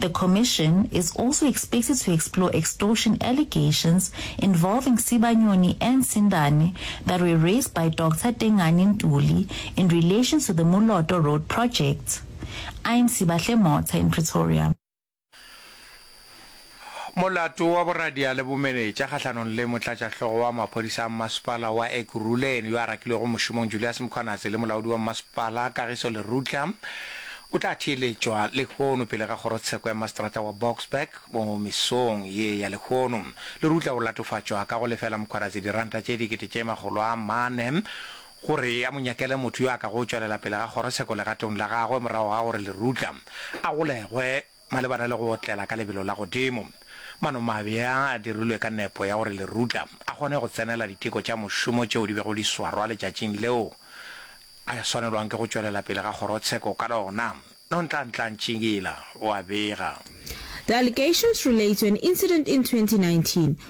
The Commission is also expected to explore extortion allegations involving Sibanyoni and Sindane that were raised by Doctor Tengani Ntuli in relation to the Moloto Road project. I'm Sibahle Motha in Pretoria. Molato wa boradia le bomenetša kgahlanong le motlatšahlogo wa maphodisa a mmasepala wa Ekurhuleni yo a rakilwego mošomong Julias Mkhwanazi le molaodi wa mmasepala Kagiso Lerutla O tla theeletšwa lehono pele ga kgorotsheko ya maseterata wa Boksburg mo mesong ye ya lehono. Lerutla o latofatšwa ka go lefela Mkhwarazi diranta tše dikete tše makgolo a mane gore a mo nyakele motho yo a kago tšwelela pele ga kgorotsheko legatong la gagwe morago ga gore Lerutla a golegwe Malebana le go otlela ka lebelo la godimo, manomabe a a dirilwe ka nepo ya gore lerutla a kgone go tsenela diteko tša mošomo tšeo di bego di swarwa letšatšing leo a swanelwang ke go tšwelela pele ga kgorotsheko ka lona, Nontlanhla Ntshingila o a bega. The allegations relate to an incident in 2019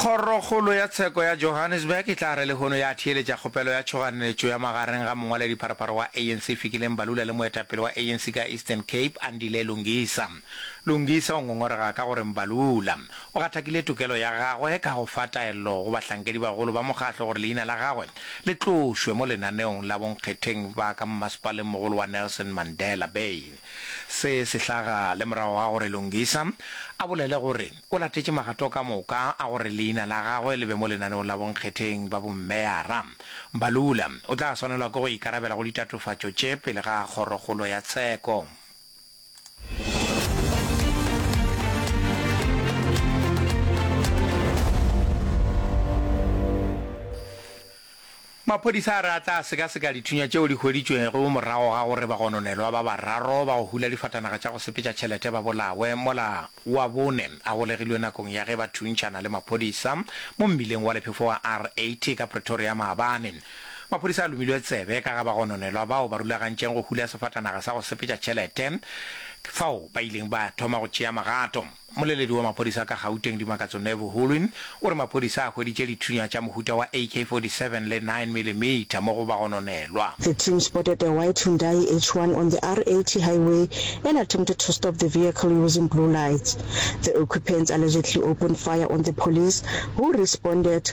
Kgorokgolo ya Tsheko ya Johannesburg e tla re lehono ya theeletša kgopelo ya tšhoganetšo ya magareng ga mongwaledipharaparo wa ANC Fikile Mbalula le moetapele wa ANC ka Eastern Cape Andile Lungisa. Lungisa o ngongorega ka gore Mbalula o gathakile tokelo ya gagwe ka go fa taello go bahlankedi bagolo ba mokgatlo gore leina la gagwe le tlošwe mo lenaneong la bonkgetheng ba ka mmasepalengmogolo wa Nelson Mandela Bay. Se se hlaga le morago ga gore Lungisa a bolele gore o latetše magato ka moka a gore leina la gagwe le be mo lenaneong la bonkgetheng ba bommeyara. Mbalula o tla swanelwa ke go ikarabela go ditatofatšo tše pele ga Kgorokgolo ya Tsheko. Maphodisa a re a tla sekaseka dithunya tšeo di hweditšwego morago ga gore bagononelwa ba bararo ba go hula difatanaga tša go sepetša tšhelete ba bolawe mola wa bone a golegilwe nakong ya ge ba thuntšhana le maphodisa mo mmileng wa lephefo wa R80 ka Pretoria maabane. Maphodisa a lomilwe tsebe ka ga bagononelwa bao ba rulagantšeng go hula sefatanaga sa go sepetša tšhelete fao ba ileng ba thoma go tšea magato. Mmoleledi wa maphodisa ka Gauteng Dimakatso Nevu Hulwin o re maphodisa a hweditše dithunya tša mohuta wa AK-47 le 9 milimeter mo go bagononelwa. The team spotted a white Hyundai H1 on the R80 highway and attempted to stop the vehicle using blue lights. The occupants allegedly opened fire on the police, who responded.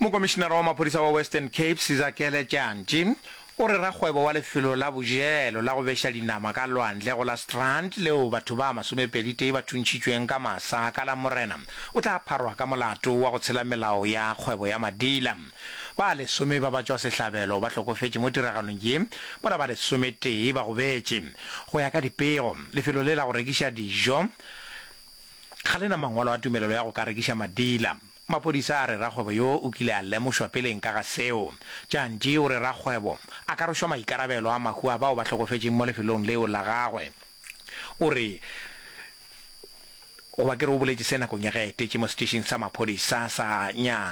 Mokomišinara wa maphodisa wa Western Cape, Sizakele Tjantji, o re rakgwebo wa lefelo la bojelo la go beša dinama ka lwandle go la Strand leo batho ba masomepeditee ba thuntšhitšweng ka masa ka Lamorena o tla pharwa ka molato wa go tshela melao ya kgwebo ya madila. Ba lesome ba batšwasehlabelo ba hlokofetše mo tiragalong ye mola ba lesometee ba gobetše. Go ya ka dipego, lefelo le la go rekiša dijo ga le na mangwalo a tumelelo ya go ka rekiša madila. Maphodisa a re rakgwebo yo o kile a lemošwa peleng ka ga seo. Tjantji o re rakgwebo a ka rwešwa maikarabelo a mahu a bao ba hlokofetšeng mo lefelong leo la gagwe. O re, Goba ke re o boletše se nakong ya ge a etetše mo setšhišing sa maphodisa sa Nya.